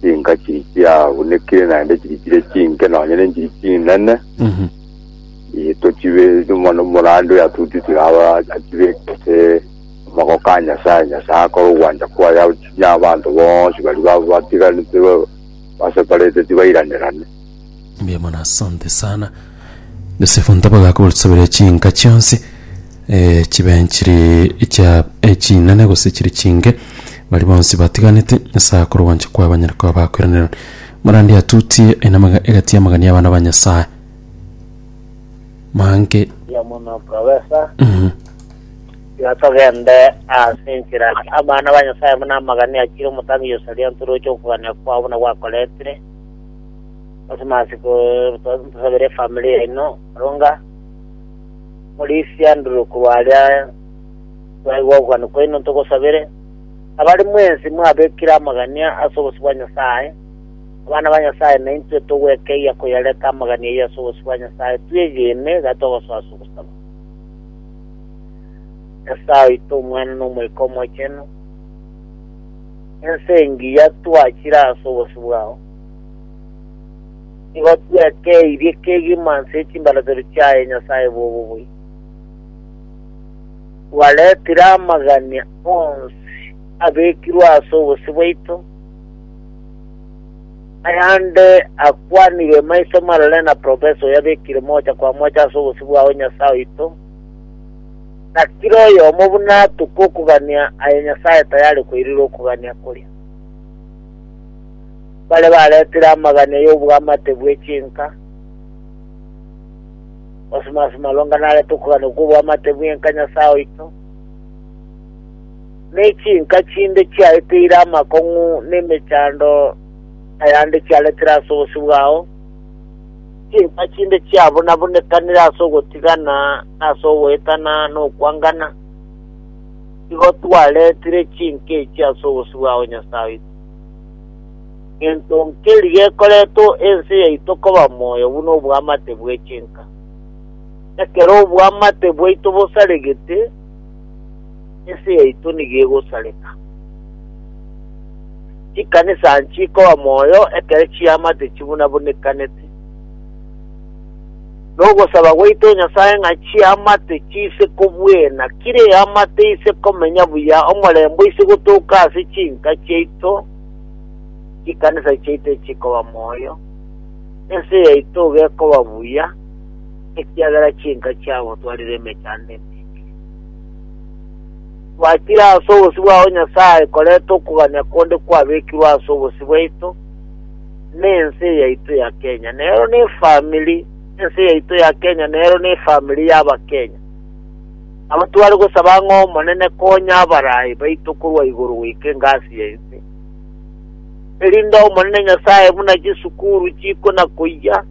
chinka chiri chiagunekire naende chiri chire chinke nonya nenchiri chinene Mhm. Eh, tochibe mono morande oyo atutitire aba achibekete amako ka nyasaye nyasaye akora ogwancha kwaye achinya abanto bonsi bari ba- batiganete ba- baseparete tibairanirane Mbuya mono asante sana Yosefu Ntabaga akogosaberia chinka chionsi eh, chibe chiri chia eh, chinene gose chiri chinge bari bonsi batiganete ase akoro gwancha kwa banyare kwa bakweranera marandi atutie enamaga egati amagani abana ba Nyasaye manke ya mono profesa mhm, yatogende ase enchera abana ba nyasaye buna amagani achire omotangi yosaria ntoroche okogania kwabo na gwakoretire Christmas tusabere efamily yaino Rwonga Morisi Andrew korwa aria twaigwa ogokwana kwaino ntogosabere abare mwensi mwabekire amagania ase obosio bwa Nyasaye abana ba Nyasaye naintwe togwekeia koyareta amagania ayio ase obosio bwa Nyasaye twegene iga togosoa ase ogosaba Nyasaye oito omwana na omoika omochenu ense engiya twachire ase obosio bwao Nigo twekeirie kegima nse y'echimbaratero chiaye Nyasae bw'obobui. Twaretire amagania onsi abekirwe ase obosio bwaito, ayande akwanirwe maiso marore na profesa oyo abekire mocha kwa mocha ase obosio bwao Nyasae oito, na kera oyomo buna atoka okogania aye Nyasae tayare koirera okogania koria. baria baretire amagane y'obwamate bwe chinka, gosima ase malonga narete okogania kw'obwamate bw'enka Nyasae oito, ne chinka chinde chiaeteire amakong'u ne emechando ayande chiaretire ase obosio bwao, chinka chinde chiabunabunekanire ase ogotigana na ase ogoetana na okwangana, igo twaretire chinka echi ase obosio bwao Nyasae oito. Gento nkeri gekoreta ense yaito koba moyo buna obwamate bwe chinka. Ekero obwamate bwaito bosaregete, ense yaito nigo egosareka. Chikanisa nchikoba moyo ekero chiamate chibunabunekanete. Nogosaba gwaito Nyasae ng'a chiamate chise kobwena, kire eamate ise komenya buya omorembo ise gotoka ase chinka chiaito, chikanisa chiaito echikoba moyo, ense yaito gekoba buya, ekiagera chinka chiabo twarire emechando eminge. Twakire ase obosio bwao Nyasae koreta okogania konde kwabekirwe ase obosio bwaito, nense yaito ya Kenya nero ne family ense yaito ya Kenya nero ne family ya Abakenya abo tware gosaba ng'a Omonene konya abarayi baito korwa igoro goika engasi ya ense erinde Omonene Nyasaye buna chisukuru chiko na koiya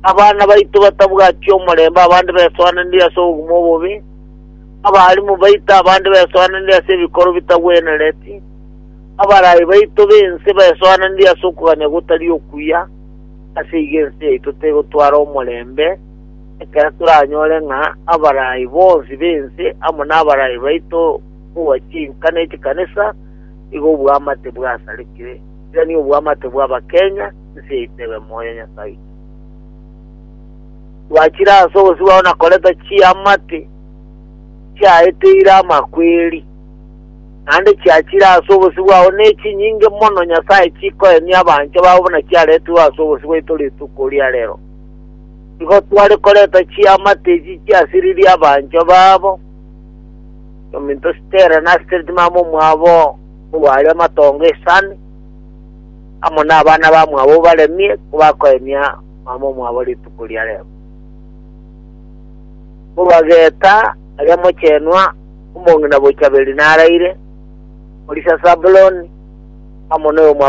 abana baito batabwati omorembe abande besoananire ase obugumu obobe abarimu baito abande besoananire ase ebikoro bitagwenereti Abarai baito b'ense baesoananirie ase okogania gotari okuya, ase igo ense yaito tegotwara omorembe, ekero toranyore ng'a abarai bonsi b'ense amo nabarai baito bwa chinka ne chikanisa nigo obwamate bwasarekire, tari obwamate bw'abakenya, ense yaito ebe moyo Nyasae oito. Twachire ase obosibao na koreta chiamate chiaeteire amakweri. naende chiachire ase obosio bwao, nechinyinge mono Nyasae chikoenia abanchwa babo buna chiaretigwe ase obosio bwaito rituko ria rero. Igo tware koreta chiamate echi chiasiririe abanchwa babo, nominto Stella na Stretmam omwabo orware amatongo esani, amo nabana bamwabo obaremie, kobakoenia mama omwabo rituko ria rero. Korwa geta aria mochenwa omong'ina bochaberi naraire, orisia Sabuloni, amo noyo mwa